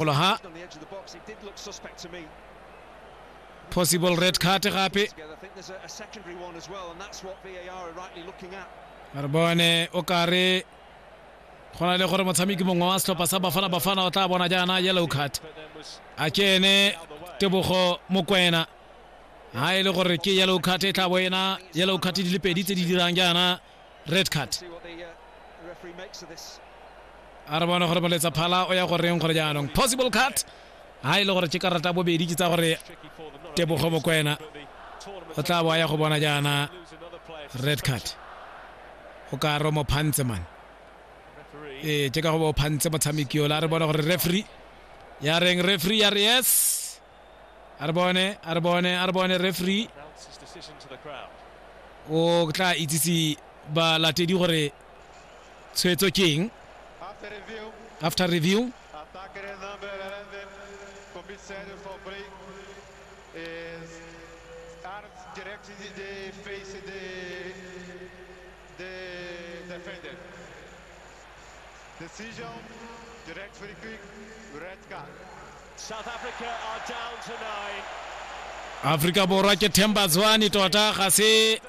golo ha possible red card gape re bone o kare go na le gore motshameki mongwe wa setlhopha sa bafana bafana o tla bona jaana yellow card a ke ene tebogo mokwena ha e le gore ke yellow card e tla bo ena yellow card di le pedi tse di dirang jaana red card a re bona gore moletsa phala o ya go reng gore jaanong possible cut ha e le gore ke karata bobedi ke tsa gore tebogo bokwena o tla bo a ya go bona jaana red card o ka ro mo phantse man ee ke ka go bo phantse motshameki ola a re bona gore referee ya reng referee ya re yes are bone are bone are bone referee o tla itsise balatedi gore tshwetso ke eng after review Decisão direct free kick, red card. South Africa are down to nine. Afrika Borwa ke Themba Zwane tota ga se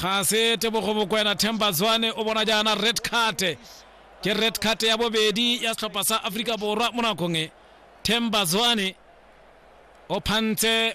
ga se tebogo bokwena Themba Zwane o bona jaana red card ke red card ya bobedi ya setlhopha sa Afrika Borwa mo nakong e Themba Zwane o phantse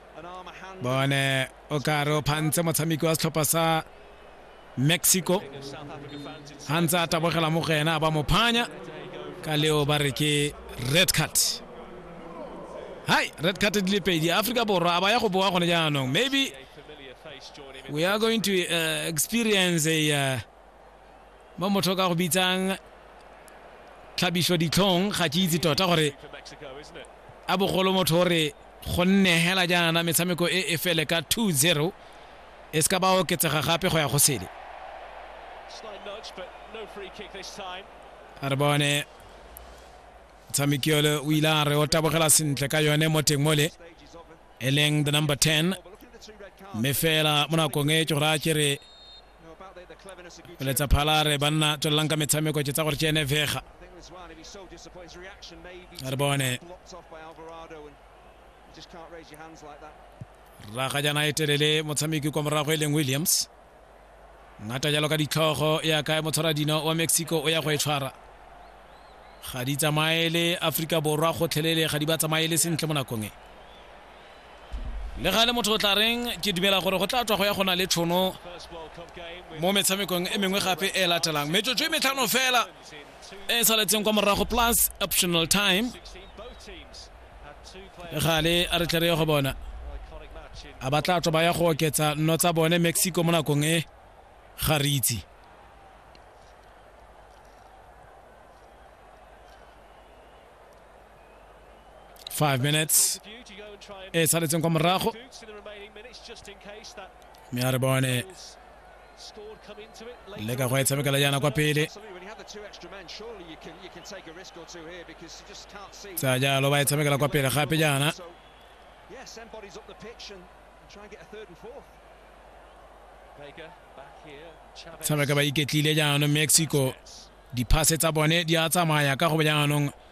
bone o kare o phantse motshameki wa setlhopha sa mexico ga ntse a tabogela mo go ena ba mo phanya ka leo ba re ke red card hai red card di le pedi aforika borwa a ba ya go boa gone jaanong maybe we are going to uh, experience a uh, mo motho ka go bitsang tlhabiso ditlhong ga ke itse tota gore a bogolo motho o re go nne hela jaana metshameko e e fele ka 2-0 e se ka ba oketsega gape go ya go sele a re bone tshameki ole o ile a re o tabogela sentle ka yone mo teng mole e leng the number 10 mme fela mo nakong e ke gore a ke re letsa phala re banna tswelelang ka metshameko tse tsa gore tsene vega re bone raga jana e telele motshameki kwa morago e leng williams ngata jalo ka ditlhogo ya kae motshwara dino wa mexico o ya go e tshwara ga di tsamaele aforika borwa gotlhelele ga di ba tsamaele sentle mo nakong e le ga le motho o tla reng ke dumela gore go tla tswa go ya go na le tshono mo metshamekong e mengwe gape e latelang metsotso e metlhano fela e e saletseng kwa morago plus optional time gale a re tlere ya go bona a ba tla tswa ba ya go oketsa nno tsa bone mexico mo nakong e ga re itse 5 minutes e saletseng kwa morago mme a re bone le ka go e tshamekela jaana kwa pele tsa jalo ba e tshamekela kwa pele gape jaana tshameka ba iketlile jaanong mexico diphase tsa bone di a tsamaya ka go jaanong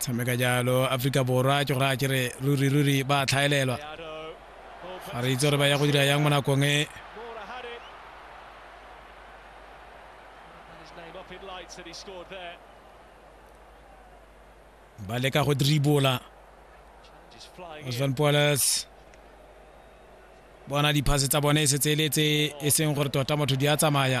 tshameka jalo aforika borwa ke gore a kere ruri ruri ba tlhaelelwa ga re itse gore ba ya go dira yang mo nakong e ba leka go dribola osvan poles bona diphase tsa bone e setse e le tse e seng gore tota motho di a tsamaya